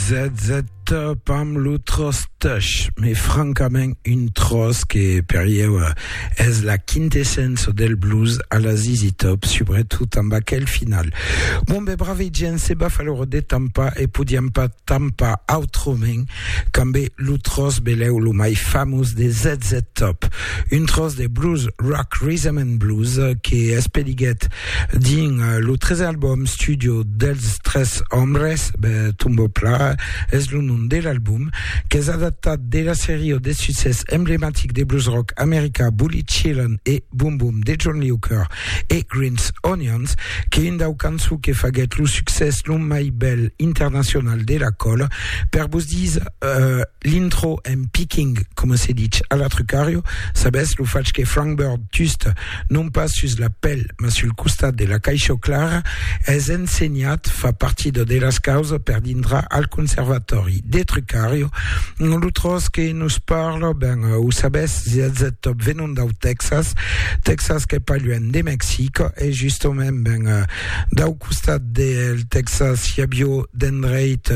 Zètzeta pam lo tròç tèch, mai francament un tròç que per ieu es la quintessença del blues a la ZZ Top, subretot amb aquel final. Bon be brave gent, se baf a l'ora de tampar e podiam pas tampar autrament qu'ambe lo tròç belèu lo mai famós de ZZ Top, un tròç de blues rock, rhythm and blues que espeliguèt Dins lo tresen album studio dels tres òmes, Tombeau Plat es lo nom de l'album, qu'es adaptat de la seria de succès emblematic de blues rock americà Bully Chillin e Boom Boom de John Lee Hooker e Green's Onions, qu'es un dau cançons que faguèt lo succès lo mai bèl internacional de la còla. Per vos dire uh, l'intro en picking, coma se ditz a la Trucario, sabètz, lo fach que Frank Bird just non pas sus la pel, mas sul costat de la caisha clara, es ensenhat, fa partida de las causas per dintrar al conservatòri de Trucario, lo tros que nos parla, ben, o sabes, zètzet top venon dau Texas, Texas qu'es pas luènh de Mexic, e justament, ben, dau costat del Texas i avió d'endreit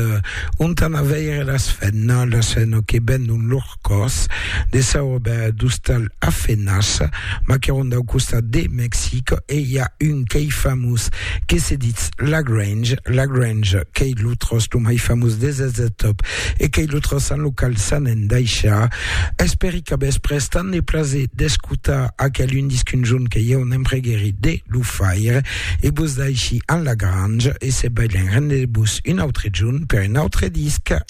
ont anà veire las fènas, las fènas que venon lor. còs de saub d'ostal a Fenach, maqueron dau costat de Mexic e i a un qu'ei famós que se ditz Lagrange, Lagrange qu'ei lo tròç lo mai famós des eths de top e qu'ei lo tròç en lo qual s'an endaishar. Espèri que vos pres tant de plaser d'escotar aquel un disc un jorn que ieu ne'n preguèri de lo faire e vos daishi en Lagrange e se balhen rendez-vos un autre jorn per un autre disc.